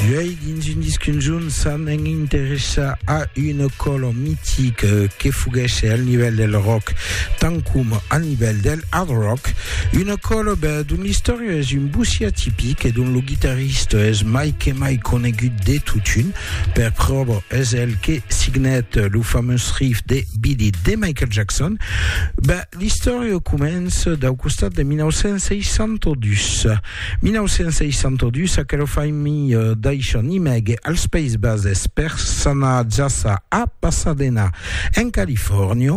Uèi, dins un disc conjunt, s'an en interessar a un color mitic que foguèsse al nivèl del rock, tant com al nivèl del hard rock, un color dont l'istòria es un bossí atipic e dont lo guitarrista es mai que mai conegut de totun. Per pròva, es el que signèt lo famós riff de Beat It de Michael Jackson. L'istòria comença dau costat de 1962. 1962, aquela familha daishan imègue als Païses Bases per s'anar jaça a Pasadena, en Califòrnia.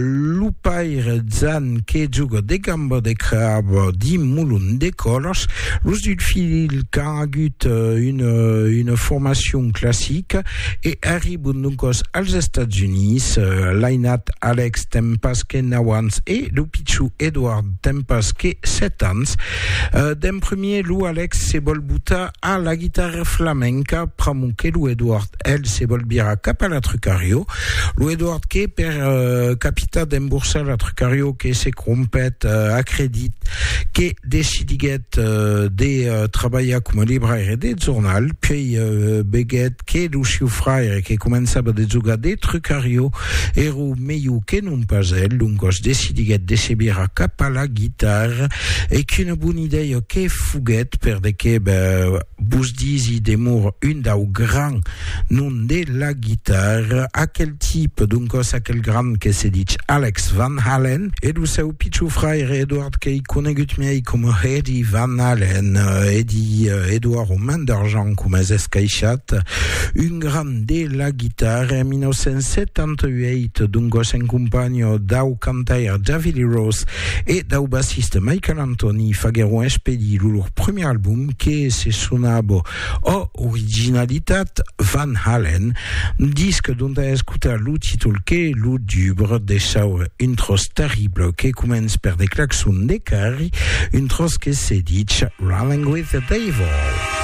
Lo paire Jan que joga de gamba de crab dins molon de colors. Los dus filhs qu'an agut una formacion classica. E arribon doncòs als Estats Units, l'ainat Alex ten pas que nau ans e lo pichon Edward ten pas que sèt ans. D'en premier, lo Alex se vòl botar a la guitarra flamenca, pr'amor que lo Edward, el, se vòl virar cap a la Trucario. Lo Edward que, per capitar d'emborsar la Trucario, que se crompèt a credit que decidiguèt de trabalhar coma libraire de jornal, puèi veguèt que lo siu fraire que començava de jogar de trucarió èra melhor que non pas el, doncas decidiguèt de se virar cap a la guitarra e qu'una bona idèia que foguèt per de que Vos disi demor un dau grand nom de la guitarra, aquel tipe, doncòs aquel grand que se dich Alex Van Halen, e lo seu pichon fraire Edward qu'ei conegut miei coma Eddie Van Halen, Eddie, Edward o Man d'Argent coma es escaishat, un grand de la guitarra en 1978, doncòs en companha dau cantaire David Lee Roth e dau bassiste Michael Anthony faguèron expedir lo lor premier album, que se sonava O Originalitat Van Halen, disc dont a escotar lo títol que lo dubre de saure un tròç terrible que comença per de claxons de carri, un tròç que se ditz Running With The Devil.